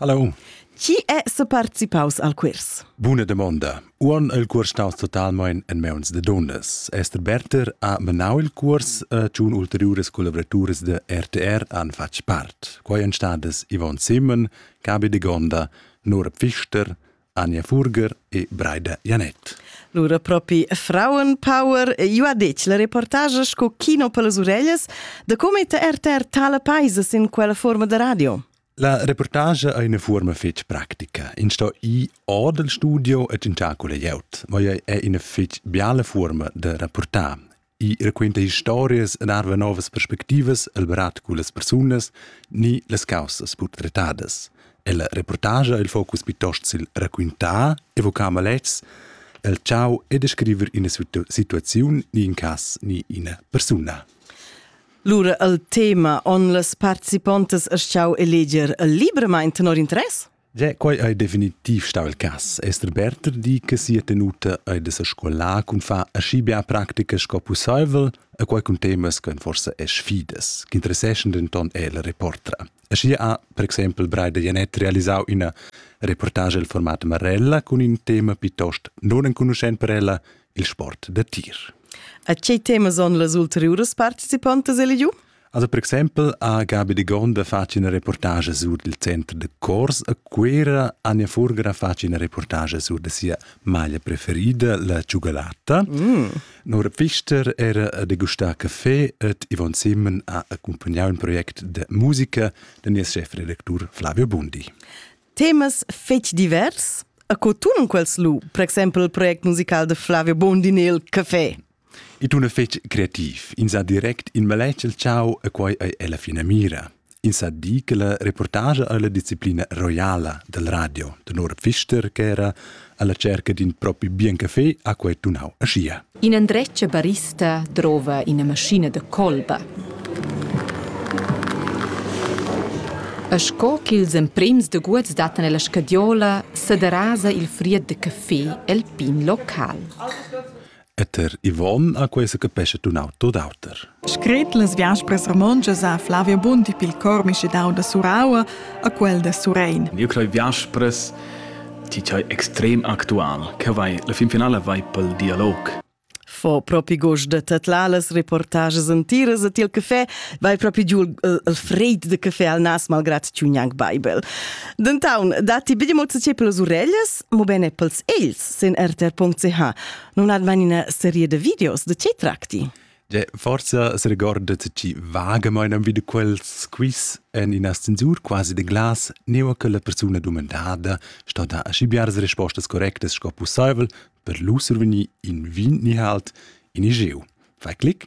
Hallo. Chi è separticipaus al quirs? Buna domanda. Uon il curs staus totalmein en meuns de donnas. Esther Berter ha menau il curs e tschun ulteriures collaboraturas de RTR han fatg part. Quai ein stadas Yvonne Simon, Gabi de Gonda, Nora Pfister, Anja Furger e Breida Janet. Lura propi Frauenpower, io ha detg la reportage sco kino per las orellas, da come te RTR tala paisas in quella forma de radio? La reportage ha una forma fitch pratica. In sto i or del studio et in tacula iaut, ma è una fitch biala forma de rapportar. I raquenta historias en arva novas perspectivas el berat cu las persunas ni las causas portretadas. E la reportage ha il focus piuttosto sil raquintar, evocar malets, el ciao e descriver una situ situazione ni in cas ni una persona. Lura al tema on las participontas astgau eleger libramain tenor interess? Ja, quai ei definitiv stau il cas. Esther Berter di che sia tenuta ei de sa scolar cun far aschi bia practica sco pusseivel e quai cun temas che forse e sfidas, che interesseschen denton el reportra. Aschi ha, per exempel, Breida Janet realisau ina reportage il format Marella cun in tema piuttost non enconuschent per ella, il sport da tir. A tgei temas han las ulteriuras participantas eligiu? Also per exempel ha Gabi de Gonda fatg una reportage sur il centro de Cors a Cuera, Anja Furger ha fatg una reportage sur de sia maglia preferida, la cioccolata. Mm. Nora Pfister era de Gustà Café et Yvonne Simon ha accompagnato un project de musica de nies chefredaktur Flavio Bundi. temas fetg divers a co tun quels lu, per exempel il project musical de Flavio Bondini il Café. E tun fetg creativ, in sa direct in maletg el ciao e quai ei ella fina mira. In sa di che la reportage alla disciplina roiala del radio de Nora Pfister che era alla cerca d'in propi bien café ha quei tunau aschia. In endretg barista drova ina maschina da colba. E sco ch'ils emprims daguots dattan ella scadiola, sederasa il fried de café el pin local. Et er Yvonne ha questa capescha tun auto d'auter. Scret las viaspras romontschas ha Flavio Bondi pil cor mischedau da Suraua a quel da Surein. Io crei viaspras ti hai extrem actual, che vai la fin finale vai pel dialog. Fo propi gos de tetlà las reportages entiras e til café vai propi giu il fred de café al nas malgrat tiu gnanc bible. Dentaun, dati bidi mozze ce pelas urellas, mo bene pels els. sin rtr.ch nun hat man ina serie de videos. De che tracti? De, forza se recordat ci vaga meinem wieder quels quiz en ina censur quasi de glas, neu che la persona domandada sto da ascibiar se rispostas correctas sco possibel per lu survenir in vin ni halt in igeu. Fai clic.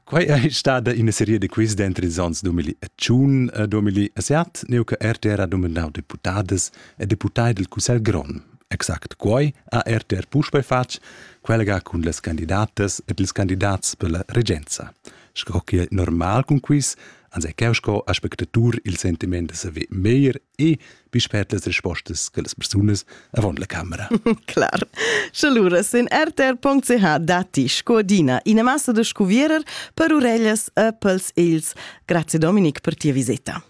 Quai è stada ina seria da quiz dentro ils anns 2001 a 2007, neu che RTR ha nominau deputadas e deputai del Cussegl grond. Exact quai ha RTR puspei fatg, collega cun las candidatas ed ils candidats per la regenza. Sco che è normal cun quiz, ans è cheu sco aspectatur il sentiment da saver meglier e bispet las respostas che las persunas avon la camera. Clar. Sche lura sin rtr.ch datti sco adina ina massa da scuvierer per ureglias, appels e ils. Grazie Dominik per tia visita.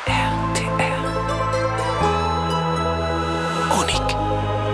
RTR. Unik.